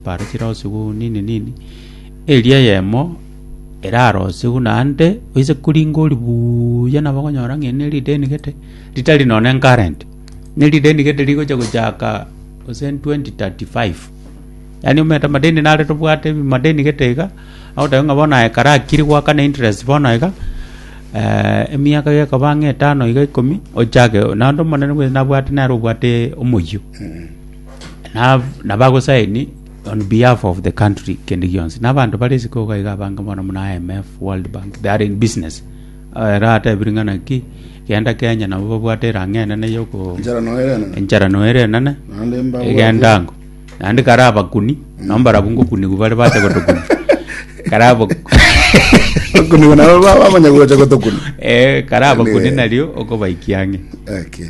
Bare chirosigwe nini nini, eria eyemo erarosigwe naende, oise koringa ori buuya nabo okonyora ng'a eri ne erideni gete, ritari nonya ne current, ne erideni gete rigocha gochaka gose 2035. Yaani omanyete amadeni nare tobwate ebi madeni gete iga, agoteba ng'a bono aya ekero akire goaka na interest bono iga, emiaka gekoba ng'a etano iga ikomi, ochake naende omonene bwensi nabwate nere obwate omoyio. Na- nabagosaini on behalf of the country kende gionsi na abanto bare isiko iga iga abange mono muna IMF World Bank they are in business Ah, ero atebire ng'a naki genda Kenya nabo babwate erang'a enene yoko Enchara noyo ere enene. enchara noere enene Naende mbabwate. egendango naende kare abakuni nombarabu ngokunigwa bare bacha gotokuna kare abo Okunigo nabo baba bamanya gocha gotokuna. Eh, kare abakuni Anyway. nario okobaikia ang'e Okay.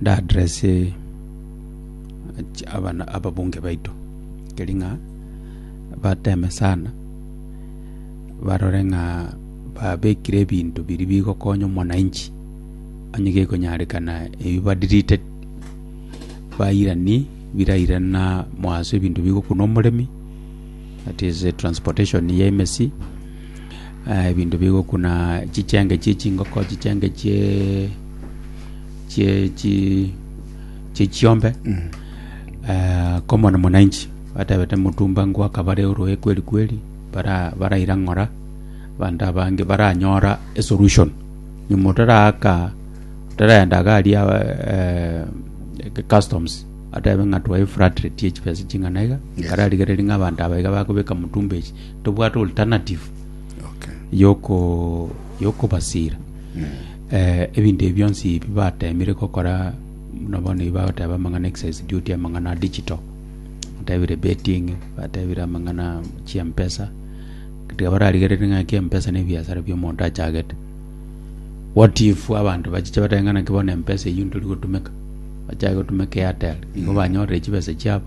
Ndaaddresse abana ababunge baito, keri ng'a bateme sana, barore ng'a babekire ebinto biria bigokonya omwananchi, onye gekonyarekana ebi ba deleted, bairanie biraire na mwaso ebinto bigokuna omoremi, that is transportation ya emesi. ebinto bigokuna chichenge chie chingoko, chichenge chie chie chi chie chiombe Eh, komona mwananchi batebete mutumba ngwaka bare oroe kweri kweri bara baraira ng'ora abanto abange baranyora esolution nyuma otaraaka otaragenda iga aria eh, customs atebe ng'a twae flat rate ye chibesa ching'ana iga Yes. bararigereria ng'a abanto aba iga bakobeka mutumba echi tobwate alternative Okay. yoko yokobasira eh, ebinto ebi bionsi ebi batemire gokora buna bono ebi bagoteba amang'ana excess duty amang'ana a digital batebire betting batebire amang'ana chiampesa tiga bararigerere ng'a kiampesa na ebiasara bia omonto achagete what if abanto bachiche batebe ng'a naki bono empesa eyio ntori gotumeka bachage gotumeka airtel igo banyorire chibesa chiabo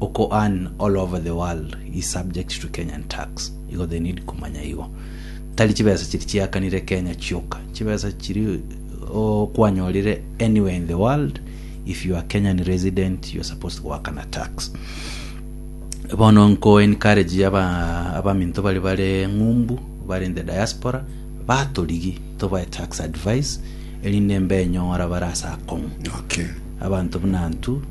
Oko earn all over the world is subject to Kenyan tax, igo they need komanya igo. Tari chibesa chiri chiakanire Kenya chioka, chibesa chiri oh, kwanyorire anywhere in the world, if you are Kenyan resident, you are supposed goakana tax. Bono nko encourage aba abaminto bari bare ng'umbu bari in the diaspora batorigi tobae tax advice erinde mbenyora barasa akong'u Okay. abantu buna ntu